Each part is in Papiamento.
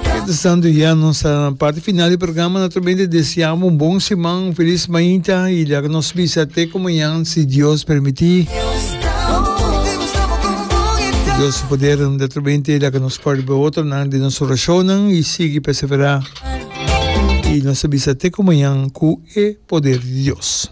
Mientras tanto ya nos ta na parti final di programa, naturalmente desea bo un bon siman, un feliz mainta y laga nos bisa te cu mañan si Dios permiti. Dios di poder naturalmente laga nos por bo otronan den nos oracionnan y sigui persevera y nos ta bisa te cu mañan cu e poder di Dios.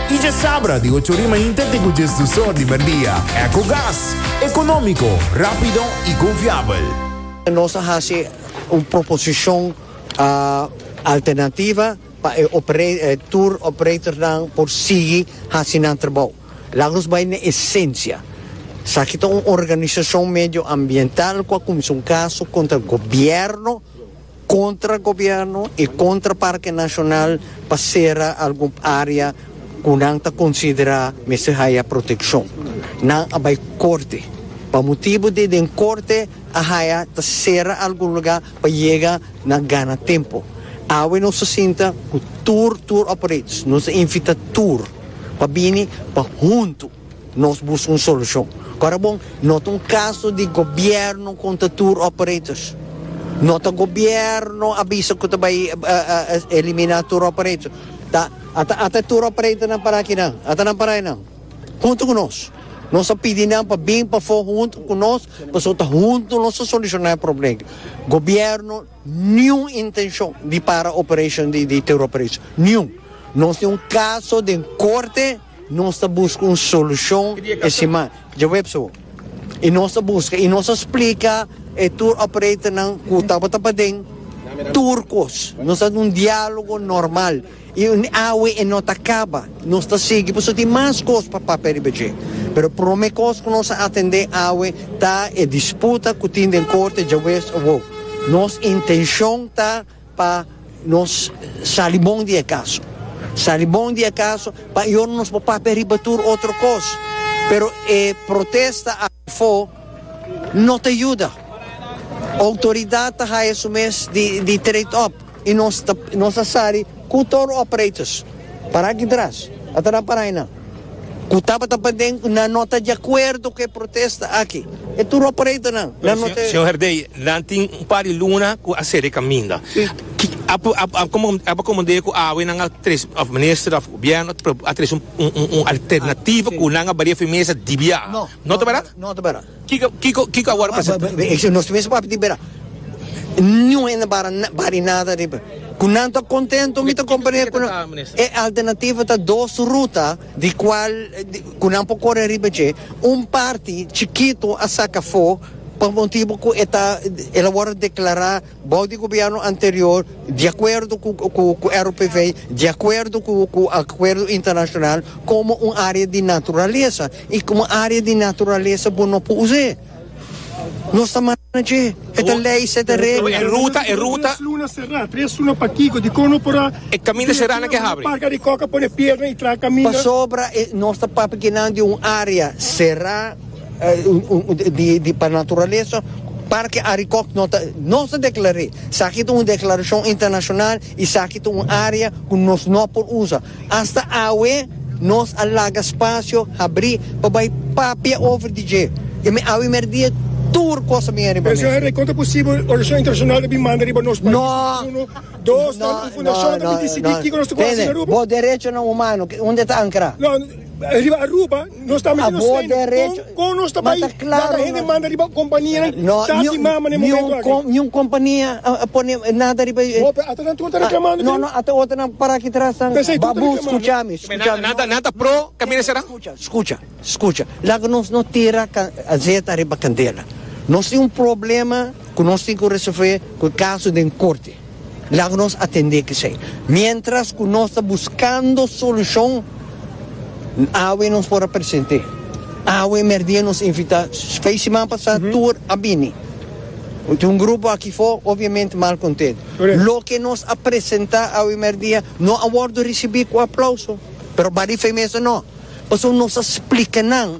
Y dje sabra di ocho ori mainta te cu djes dos or di merdia. Ecogas, economico, rapido y confiabel. Nos a haci un proposicion alternativa pa e tour operatornan por sigui haci nan trabou. Laat nos bay na esencia. Esaki ta un organisacion medioambiental cu a cuminsa un caso contra gobierno. Kontra gobierno i kontra Parke Nashonal pa sera algun área ku nan ta konsiderá mester haya protekshon. Nan a bai korte. Pa motibu di den korte a haya ta sera algun lugá pa yega na gana tempu. Awe nos ta sinta ku tur tour operators, nos ta invitá tur pa bini pa huntu. Nos busca un solucion. Ora bon, no ta un caso di gobierno contra tour operators. No ta gobierno a bisa cu ta bay elimina tour operators. Ta ata e tour operatornan para akinan. Ata nan para aynan hunto cu nos. Nos a pidi nan pa bin pafo hunto cu nos pasobra ta hunto nos ta soluciona e problem. Gobierno niun intencion di para operation di tour operators. Niun. Nos tin un caso den corte. Nos ta buska un solushon e siman djaweps awo i nos ta buska i nos a splika e tour operatornan ku tabata paden tur kos. Nos ta un dialogo normal i awe e no ta kaba. Nos ta sigui pasobra tin mas kos pa papia riba dje. Pero prome kos ku nos a atende awe ta e disputa ku tin den korte djaweps awo. Nos intenshon ta. Pa nos sali bon di e kaso. Sali bon di e kaso pa e jorna nos por papia riba tur otro kos. Pero e protesta afo no ta yuda. Outoridat ta haya su mes di trade up i nos ta sali ku tur operators. Para aki tras. Ata nan para ahi nan. ku tabata pa den nan no ta di akuerdo ku e protesta aki. E tur operatonan nan no ta. Señor Herdey, nan tin un par di luna ku a sere kaminda. A akomod'é ku awe nan a tres, òf minister òf gobièrnu a tres un alternativo ku nan a baria firmesa dibia. No ta bera? No ta bera. Kiko, kiko a wòrdu presentá? Esei nos mes ku papia di bira. Niun hende no bari nada riba. Ku nan ta kontentu mi ta komprendé ku e alternativa ta dos ruta di kual ku nan por kore riba dje. Un parti chikitu a saka afó pa motibu ku e ta el a wòrdu deklará. Bou di gobièrnu anterior, di akuerdo ku RPV, di akuerdo ku akuerdo internashonal, komo un área di naturalesa. I komo área di naturalesa bo no por us'é. Nos ta manda na dje. E ta lei, se ta regla. E ruta, e ruta. Tres luna será, tres luna pa kiko? Dikon no por a. E kaminda será nan ke habri. Nan parka di kòk a pone piedra i traha kaminda. Pasobra nos ta papia nan di un área será. Di pa naturalesa Parke Arikòk no ta nos ta deklar'é. Saki ta un deklarashon internashonal i saki ta un área ku nos no por usa. Asta awe nos a laga spasio habrí pa bai papia over di dje. I mi awe mer'dia tur kos a bini riba mesa. Kon ta posibel organisashon internashonal ta bin manda riba nos pais? Uno. Dos, nan un fundashon ta bin disidí kiko nos ta ku hasi na Aruba? Bo derechonan humano, unda e ta ankrá? Riba Aruba nos ta mester nos trainan con nos ta bay laga hende manda riba companianan tati mama den momento aki. No, niun compania a pone nada riba e. Bo pe ata nan tur ta reclamando den. No, no, ata otronan para aki tras nan babu scucha mi, scucha mi. Nan ta pro camina sera? Scucha, scucha, scucha. Laga nos no tira azeta riba candela. Nos tin un problema cu nos tin cu resolve cu e caso den corte. Laga nos atendé k'esei. Miéntras ku nos ta buskando solushon, N awe nos por a present'é. Awe merdía nos invitá, fei siman pasá tur a bini. Tin un grupo aki fo, obviamente mal kontentu. Loke nos a presentá awe merdía no a wòrdu risibí ku aplauso, pero bali fei mester no. Pasobra nos a splika nan.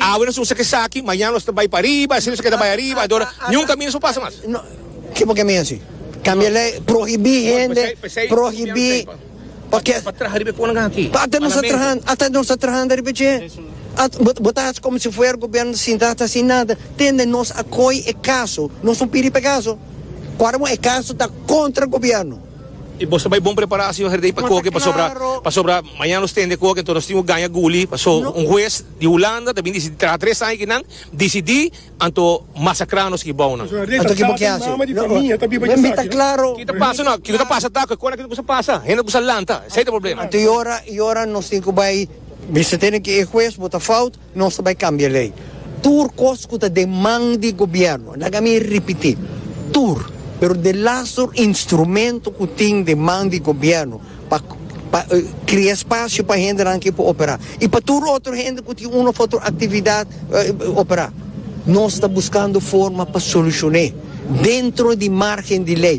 Awe nos usa esaki, mañana nos ta bai pariba, asina nos a keda bai ariba, adora, niun kaminda nos por pasa mas. Ke por ke mi hasi? Kambia e lei, prohibí hende, prohibí oke. Pa traha riba e konan aki. Pa ata nos a traha, ata nos a trahando riba dje, bo ta hasi komo si fuera gobièrnu ta sinta ta hasi nada, tende nos a koi e kaso, nos no pidi pa e kaso, ora bo e kaso ta kontra gobièrnu. I bo ta bai bon prepará, señor Herdey, pa koke, pasobra, pasobra mañana nos tende koke, enton nos tin ku gaña guli, paso un hues. di Hulanda ta bin disidí traha tres aña ki nan disidí anto masakra nos ki bou nan. Anto kibo ke hasi? Wen mi ta klaro. Ki ta pasa no? Kiko ta pasa ta ku e kos nan ki ta kusa pasa? Hende ta kusa lanta. Esei ta e problema. Anto yora yora nos tin ku bai bisetene ku e hues bo ta fout, nos ta bai kambia lei. Tur kos ku ta den man di gobièrnu, laga mi ripití, tur, pero de las tur instrumento ku tin den man di gobièrnu, Pa krea spasio pa hendenan ke por opera i pa tur otro hende ku tin un of otro aktividat opera. Nos ta buskando forma pa solushoné dentro di margen di lei.